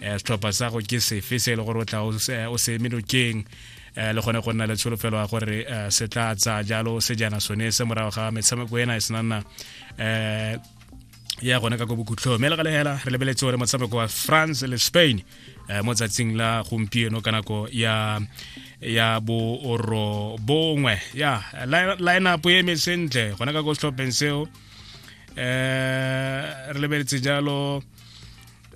um setlhopha sa go ke sefe se e le gore o tla o se emelokeng um le gone go nna le tsholofelo ya gore um se tla tsa jalo sejana sone se morago ga metshameko ena e senanna um ya gone ka ko bokhutlhong mme le ga legela re lebeletse gore motshameko wa france le spain um mo tsatsing la gompieno ka nako ya ya booro bongwe ya lineup e eme sentle gone ka ko setlhopheng seo um re lebeletse jalo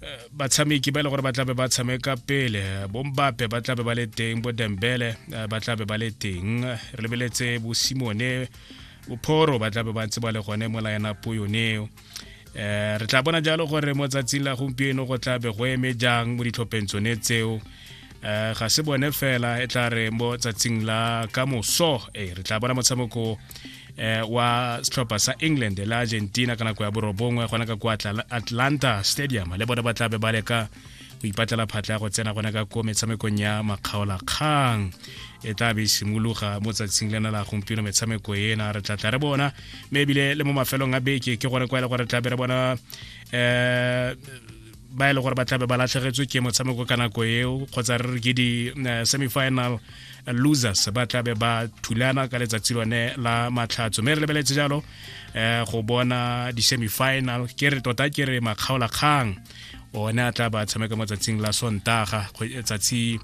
eh, batshameki ba e le gore ba tlabe ba tshameka pele bombape ba tlabe ba le teng bo dembele eh, ba tlabe ba le teng re lebeletse bosimone bophoro ba tlabe ba ntse ba le gone mo lineup yoneo um re tla bona jalo gore mo tsatsing la gompieno go tlabe go eme jang mo ditlhopheng tsone tseo um ga se bone fela e tla re mo tsatsing la ka moso e re tla bona motshameko eh, wa setlhopha sa england le argentina ka nako ya borobongwe gona ka kwa atlanta stadium le bone ba tlabe ba leka go ipatlela phatla ya go tsena gona ka ko metshamekong ya makgaolakgang e tla be e simologa mo tsatsing lena la gompieno metshameko ena re tlatla re bona mme ebile le mo mafelong a beke ke gone kwa e le gore tlabe re bona um ba e le gore ba tlabe ba latlhegetswe ke motshameko ka nako eo kgotsa re re ke di-semifinal eh, losers ba tlabe ba thulana ka letsatsi lone la matlhatso mme re lebeletse jalo um go bona di-semifinal ke re tota ke re makgaolakgang one a tla ba tshameka mo tsatsing la sontaga tsatsi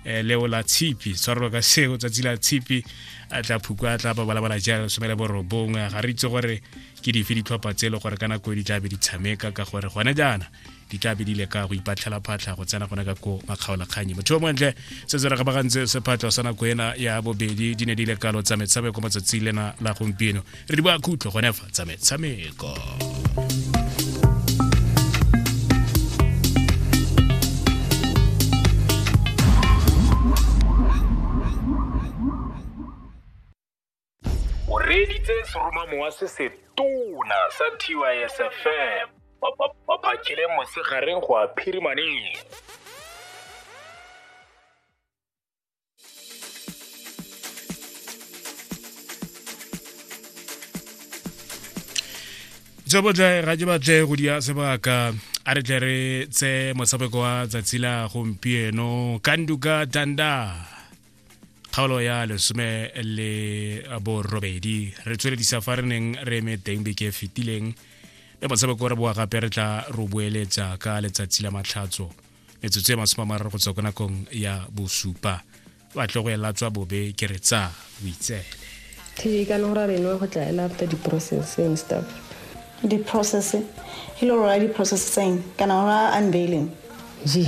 eh, leo la tshipi tshwarelo ka seo tsatsi la tshipi a tla phuka a tla ba balabala jalo somele borobongwe ga re itse gore ke dife ditlhopha tse e le gore ka nako e di tla be di tshameka ka gore gone jaana di tla be di leka go ipatlhela phatlha go tsena gone ka ko makgaolakganyi motho o montle se se ragabagantse sephatlho sa nako ena ya bobedi di ne di lekalo tsa metshameko matsatsi lena la gompieno re di boa khutlho gone fa tsa metshameko o reeditse seromamowa se se tona sa tysfm ba phakile mosegareng go a phirimaneng tse botle ga ke batle go dia sebaka a re tle re tse motshameko wa tsatsi la gompieno kanduka danda kgaolo ya lesome le borobedi re tsweledisa fa re neng re eme teng beke e fetileng le motshameko re boa gape re tla ro boeletsa ka letsatsi la matlhatso metsotso e masome a mararo go tswa ko nakong ya bosupa batle go ela tswa bobe ke re tsa boitsele tv ka nora reno go tla ela after di-process and stuff di-process e le gore ra di-process tseng kana ora unveiling ji